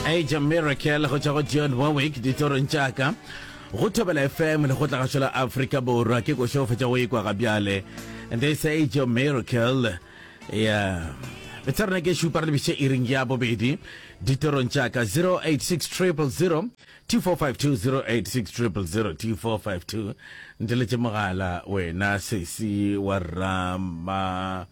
age a miracle go tšwa go john warwick ditorong tšaka go thobela fm le go tla gašola afrika borwa ke košo fetša go ikwa ga bjale this age a miracle yeah betsha rona ke šupa re lebiše iring ya bobedi ditorong tšaka 086000 2452 086000 2452 nteletše mogala wena sesi wa rama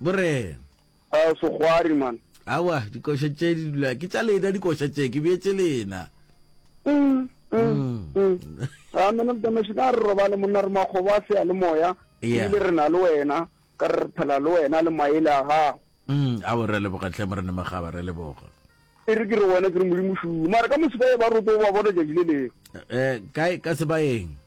Bo re. A sogwari man. Awa, dikoša tše di dula. Ke tša lena dikoša tše, ke beetse lena. Mm. Mm. Mm. A man of the nation a re robale monna re makgobo a sea le moya. Yeah. Ebile re na le wena, ka re re phela le wena le maele a gago. Mm. Awa re leboga hle Morena Magaba, re leboga. E re ke re wena ke re Modimo šuu. Mara ka mo Sebae ba roto ba bona tšatši le leng. Eh, kae ka Sebaeng?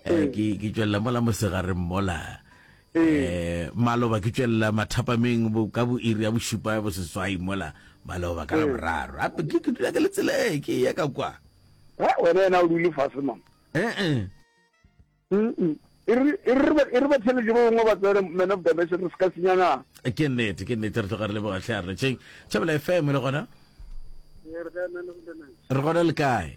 Eh, ke ke tswelela mola mosegareng mola eh maloba ke tswelela mathapameng bo ka bo iri ya bošupa bo seswai mola maloba ka la boraro ape ke ke dula ke le tsela e ke ya ka kwa he wena yena o dule fase mama eh eh Mm-mm. e re- e re ba- e re ba theletše ba bangwe ba tsere man of dimension re se ka senyana ke nnete ke nnete re tloga re le bogatlhe a re tšeng tšhabela fm le gona re gona le kae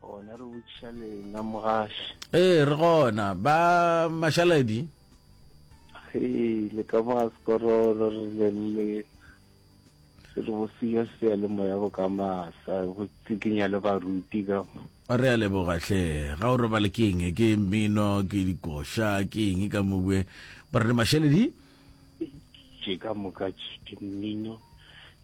gona re botšiša lena mogaši ee re gona ba mašaledi ee le ka moga sekorolo re le le re bosio sea le moya go ka masa go tsikinya le baruti ka re a leboga hle ga o robale ke eng ke mmino ke dikoša ke eng ka mobue ba re mašaledi tše ka moka tše mmino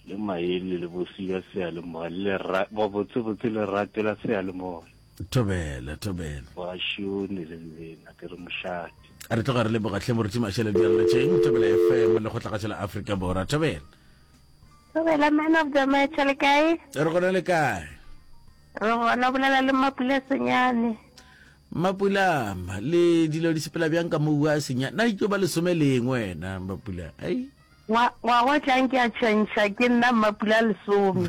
le maele le bosika seyalemoya le ba botse botse le ratela seyalemoya thobela thobela ba shone le nna ke re moshate re tloga re le bogatlhe moruti mashele di alla tšeng thobela fm le go tlagatša la afrika bora thobela thobela man of the match le kae re gona le kae re gona bolela le mapulesonyane Mapula, le dilo di sepela bjang ka mo ua a senya? Na ikyo ba lesome le eng wena Mapula? Ai. Ngwa, ngwaga o tlang ke a tšhentšha ke nna Mmapula lesome.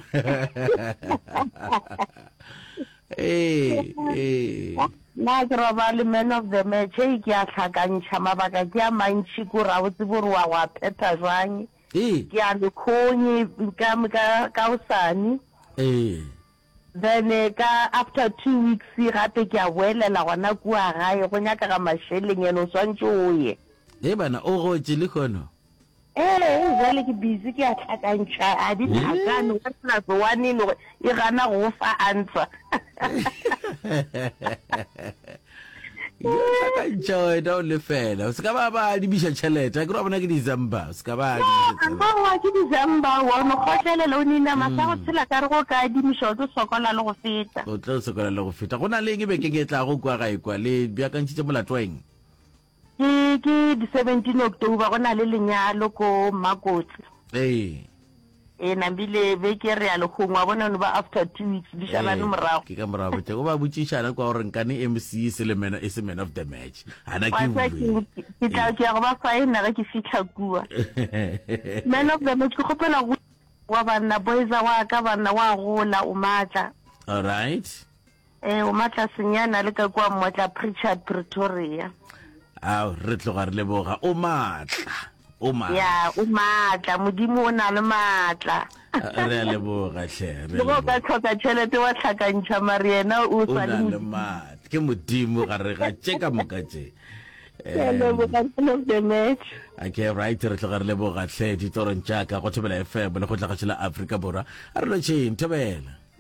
Ee, ee. Na ke robale man of the match, hei ke a hlakantšha, mabaka ke a mantši ko ra botse bo re wa go a phetha jwang. Ee. Ke a lekgong ka, ka, ka osane. Ee. Then ka after two weeks gape ke a boelela gona kua gae, go nyakega mašeleng and o swantše o ye. Hee bana, o gotše lehono? Ee, bjale ke busy ke a hlakantšha, a di hlakane, one plus one e le gore e gana go go fa answer. joy da o lefela o se ka ba ba adibiša tšhelete ke ra bona ke december o se ka ba adibišaoa ke december wa no kgotlelele o nina masa go mm. tshela ka re go ka adimiša o tlo sokola le go feta o tlo sokola le go feta go na le eng e bekeng e tla go kwa ga e kwa le bjakantšhitše molato wa eng Ke ke di 17 October go na le lenyalo ko Makotse. Ee. E na bile be ke re a le gongwa bona no ba after 2 weeks di shalane ee, morago. Ke ka morago tšego ba botšišana kwa gore nkane MC e se le mena e se man of the match. Hana ke bue. Ke tla ke ya go ba signa ge ke fihla kua. Man of the match ke kgopela go wa banna boys wa ka banna wa gola o matla. All right. Ee, o matlasenyana le ka kua Mmotla Pritchard, Pretoria. Ao, re tloga re leboga. O matla. O matla. Ya, o matla. Modimo o na le matla. Re a leboga, hle. Re leboga. Ka tlhoka tšhelete wa tlhakantšha mari yena o sa le modimo. Ke modimo ga re ga tše ka moka tše. Okay, right re tloga re leboga hle ditorong tša ka go thobela fm le go tla ga tšhela afrika borwa a re lotšheng thobela